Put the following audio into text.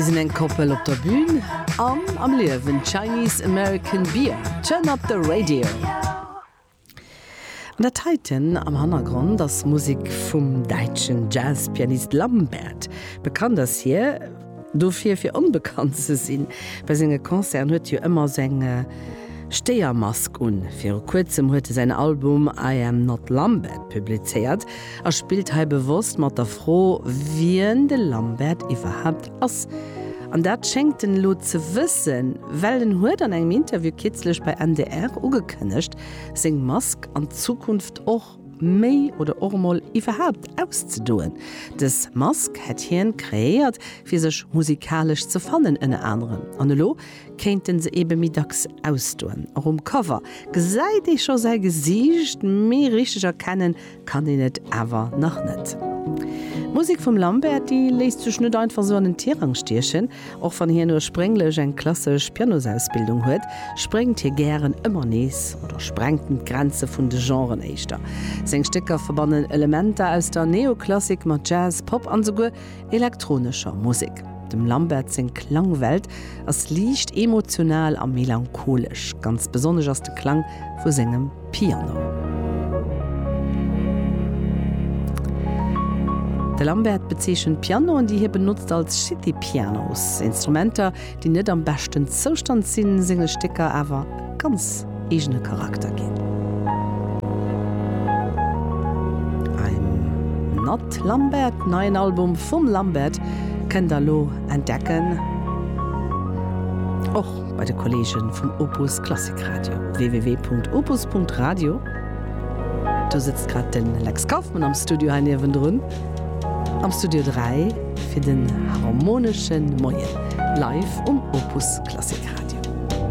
Si sinn eng Koppel op der Bühn an am Liewen, Chinese American Beer, Turn Up The Radio. An dat heiten am Hannergrond ass Musek vum däitschen Jazzpianist Lambert. Bekannt ass hie dofir, fir onbekannt ze sinn. Bei senge Concerten huet hie ëmmer esou eng Stéiermask un. Viru Kuerzem huet e säin Album I Am Not Lambert publizéiert. A spillt hei bewosst mat der Fro, wien de Lambert iwwerhaapt ass. An dat schéngt en elo ze wëssen, well en huet an engem Interview kierzlech bei NDR ugekënnegt, seng Mask an Zukunft och méi oder och emol iwwerhaapt auszedoen. Dës Mask hätt hien kreéiert, fir sech musikalesch ze fannen, ënner anerem. An elo kéint en se ebe méi dacks ausdoen. Och um Cover gesäit ee scho säi Gesiicht méi richteg erkennen, kann een et awer nach net. D'Musek vum Lambert, déi léisst sech net einfach esou an den Tirang stiechen. Och wann hien ursprénglech eng klassesch Pianosausbildung huet, spréngt hie gären ëmmer nees oder sprengten d'Grenze vun de Genren éischter. Seng Stécker verbannen Elementer aus der Neoklassik mat Jazz, Pop an esouguer elektronescher Musek. Dem Lambert seng Klangwelt ass liicht emotional a melancholesch, ganz besonnesch ass de Klang vu sengem Piano. De Lambert bezeechent Pianoen, déi hie benotzt, als City Pianos, Instrumenter, déi net am beschten Zoustand sinn, senge Stécker awer e ganz eegene Charakter ginn. I'm Not Lambert, neien Album vum Lambert, kënnt der elo entdecken, och bei de Kollege vum Opus Klassik Radio, www.opus.radio. Do sëtzt grad de Lex Kauffmann am Studio hei niewendrun am Studio 3. Fir den harmonesche Moien, live um Opus Klassik Radio.